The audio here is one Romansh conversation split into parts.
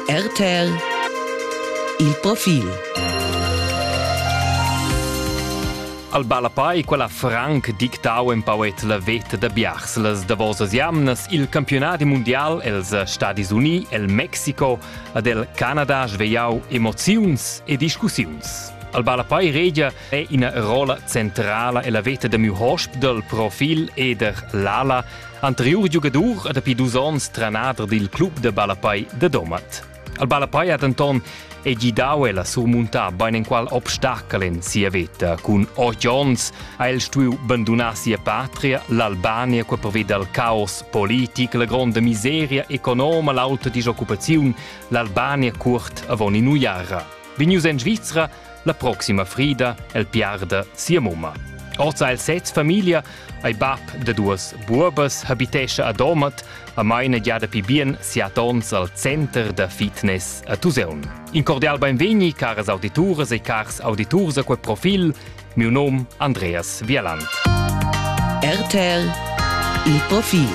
RTL Il profil Al Balapai quella franc dictau empauet la veta da biars las davosas jamnas il campionat mundial els Stadis Uni, el Mexico, ad el Canada svegliau emoziuns e discussiuns. Al Balapai regia è ina rolla centrala ella veta da miu hosp dal profil eder l'ala, anteriur giugadur e dapi dus onns tranader dil club de Balapai de Domat. Al Balapai ha denton e gidau el a surmuntar beinenqual obstacle en sia veta. Cun otg onns ha el stuiu bandunar sia patria, l'Albania, qua perveda al caos politic, la gronda miseria economa, l'auta disoccupaziun, l'Albania curt avon in uiara. Vegnius en Svizra, La proxima frida el piarda sia mumma. Orza il sez famiglia ei bab da duas buobas habitescha a Domat a maina gia dapi bien siat ons al center da fitness a Tuseun. In cordial benvegni caras audituras e cars auditurs a quel profil, miu nom Andreas Vialand. RTL Il profil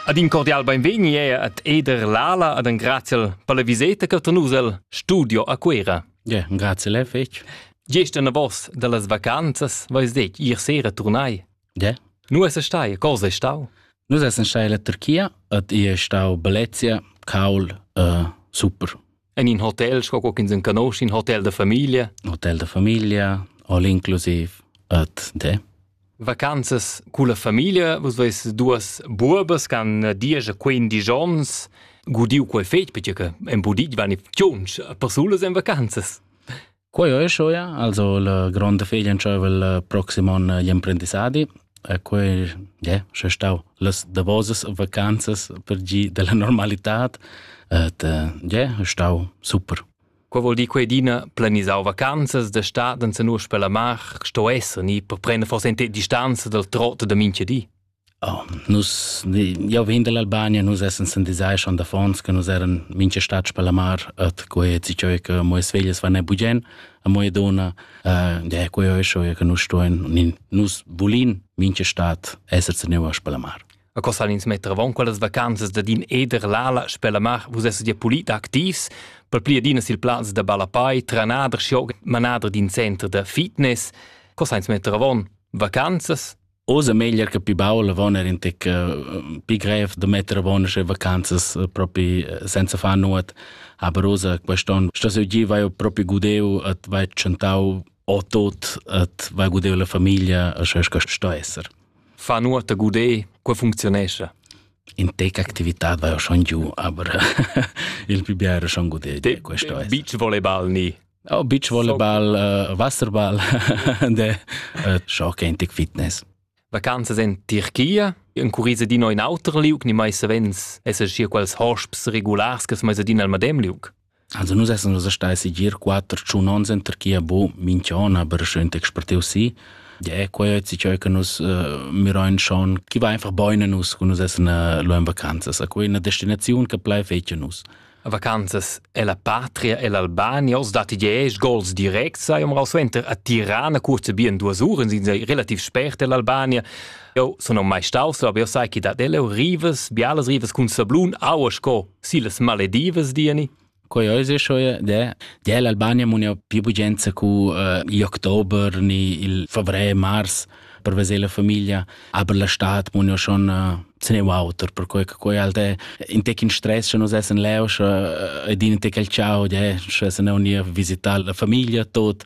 Ad in cordial beinvegni è ad Eder Lala ad engraziel per la viseta che tenusel studio a Cuera. Ja, grazie le fec. Gest en vos de las vacanzas vais det ir sera turnai. Ja. Nu es stai, cosa è stau? Nu es stai la Turchia, ad i è stau Belezia, Kaul, uh, super. En in hotel, sco co ch'ins enconosce in hotel da famiglia. Hotel da famiglia, all inclusive, et de. Vacanzas con la famiglia, vos veis duas buobas can diesch quindici ons gudiu quel fetg perché che en budit van i tschunch persulas en vacanzas. Quei ei schuia, also la gronda feglia entscheiva il proxim onn gli emprendissadi e quei, yeah, sche stau las davosas vacanzas per gi dalla normalitad, et yeah, stau super. Quei vuol dir quei d'ina planisau vacanzas da stad en senus per la mar sto esser ni per prender forse en distanza dal trot da mincha di? Oh, nus, jau vegn dall'Albania, nus essens in design schon d'affons che nus eran mincha stats per la mar, et quei zi cheu che mo es veglias van e bugen, a mo e dona, uh, de quei oi schon che nus stoen, nus vulin mincha stat esser zeneuvas per la mar. A cosa ins mettevon quellas vacanzas da din eder l'ala sper la mar, vus esses ja pulit activs, per pli adina sil plaz da balapai, tranader, schioc, manader d'in center da fitness. Cosa ins mettevon? Vacanzas? Oz è meglier che pi baul avon er in tic uh, pi grev da metter a bona sche vacanzas uh, propi uh, senza far nuot. Aber Rosa, quest'on, sto se gi vai propi gudeu at vai chantau o tot at vai gudeu la famiglia a sche sto esser. Fa nuot a gudeu, qua funzionesce. In tec actività vai schon giù, aber il più biero schon gudeu. Te, questo beach volleyball ni Oh, beach volleyball, uh, wasserball de uh, schock antic fitness. Vacanzas in Tirchia, in curisa di no in auter liug, ni mai savens esser schier quels hosps regulars che mai adina al madem liug. Also nus essen nus stai si gir quatter tschun ons in Tirchia bu minchiona per schön expertiu si. Ja, quei ist ciò che nus uh, mirain schon, chi va einfach boine nus, cu nus essen uh, lo in vacanzas. A quei è una destinazione che plai fece nus. A vacanzas è la patria e l'Albania oz datti diesch gols directs. Eu m'rau suenter a Tirana curze bien duas uras, in sei relativ spert dell'Albania. Eu sun mai staus, aber eu sai che dat eleu rivas, bialas rivas cun sablun, aua sco si las Maledivas, diani. Ko jo izešel je, da je l'Albanija mu ne più bugenza cu uh, october ni il fevrier mars. per veser la famiglia, aber la stat mo schon se ne auter per quei quei alte in tec in stress che nus essen leu ed in tec al ciao de sche se ne unia visitare la famiglia tot